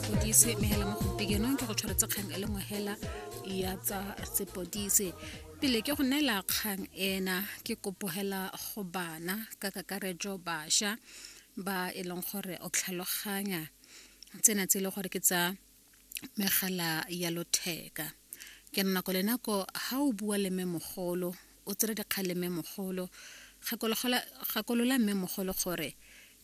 sepodise mme hela mo gompikenong ke go tshwaretse kgang e le nngwe hela ya tsa sepodise pele ke go neela kgang ena ke kopogela go bana ka kakaretso bašwa ba e leng gore o tlhaloganya tsena tse e le gore ke tsa megala ya lotheka ke nna ko lenako ga o bua le mme mogolo o tsere dikgang le mme mogolo gakolola mme mogolo gore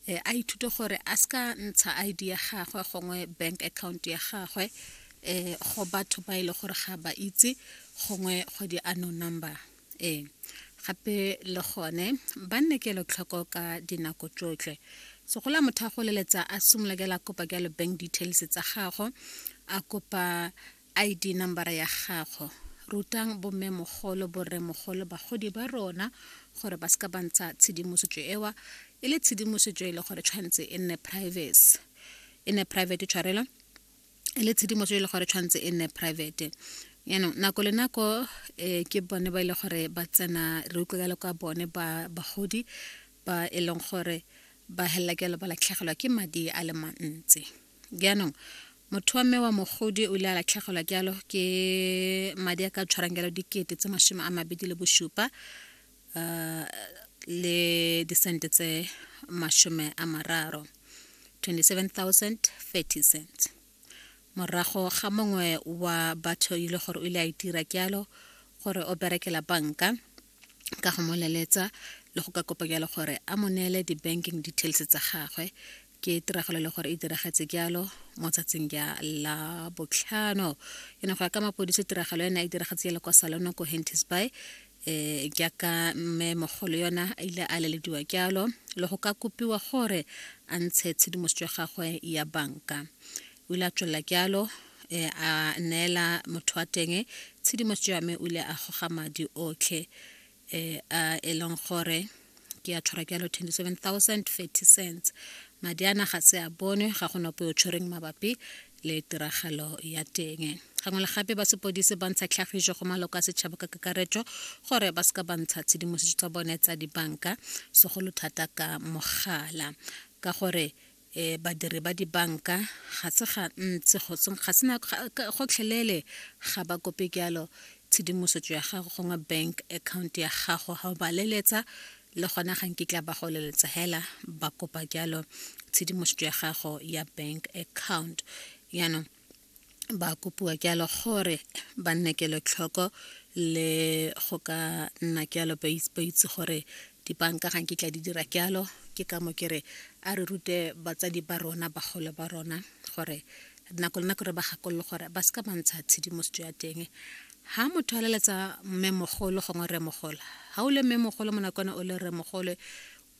e, a ithute gore a se ka ntsha id ya gagwe gongwe bank account ya gagwe um go batho ba e le gore ga ba itse gongwe go di ano number ee gape le gone ba nne kelotlhoko ka dinako tsotlhe segola motho a goleletsa a simolokela kopa jalo bank details tsa gago a kopa ID nambara ya gago. Rutang bommemogolo, borremogolo, bagodi ba rona gore ba seka ba ntsha tshedimosetso ewa e le tshedimosetso e le gore tshwanetse e nne privacy e nne private tshwarelo e le tshedimosetso e le gore tshwanetse e nne private yaanong nako le nako um ke bone ba e le gore ba tsena re utlwe ka le kwa bone ba bagodi ba e leng gore ba helela ke lo ba latlhegelwa ke madi a le mantsi Jaanong, motho wa mme wa mogodi o ile a latlhegelwa jalo ke madi a ka tshwarang jalo dikete tse masome a mabedi le bosupa um le disente tse masome a mararo 27030 cents morago ga mongwe wa batho e le gore o ile a itira jalo gore o berekela banka ka go mo leletsa le go ka kopa jalo gore a mo neele di-banking details tsa gagwe ke tiragalo le gore e diragetse jalo mo tsatsing ja la botlhano e ne go ya ka mapodisi tiragalo ena e diragetse jalo kwa salono ko hentis by um jaaka mme mogolo yona a ile a lelediwa jalo le go ka kopiwa gore a ntshe tshedimosetso ya gagwe ya banka O ile a tswelela ke alo e, a neela motho wa teng tshedimosetso ya me o ile a goga madi otlhe e, a e leng gore ke a tshwara ke alo 27030 cents madi a naga se a bonwe ga go nope o tshwereng mabapi le tiragalo ya teng gangwe le gape ba sepodise ba ntsha tlhagiso go maloko a setšhaba ka kakaretso gore ba seka ba ntsha tshedimosetso tsa bone tsa dibanka segolo thata ka mogala ka gore e badiri ba dibanka ga se ga ntse go se na gotlhelele ga ba kope jalo tshedimosetso ya gago gongwe bank account ya gago ga o ba leletsa le gona ga nkitla ba go leletsa hela ba kopa jalo tshedimosetso ya gago ya bank account yaanong ba kopiwa jalo gore ba nne kelotlhoko le go ka nna jalo ba itse gore dibanka ga nkitla di dira jalo ke ka mo ke re a re rute batsadi ba rona bagolo ba rona gore nako le nako re ba gakololo gore ba se ka ba ntsha tshedimosetso ya teng ha motho a leletsa mmemogolo gongwe rremogolo ga o le mmemogolo mo nakone o le rremogolo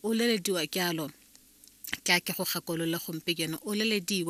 o lelediwa jalo ke a ke go gakolole gompe jeno o lelediwa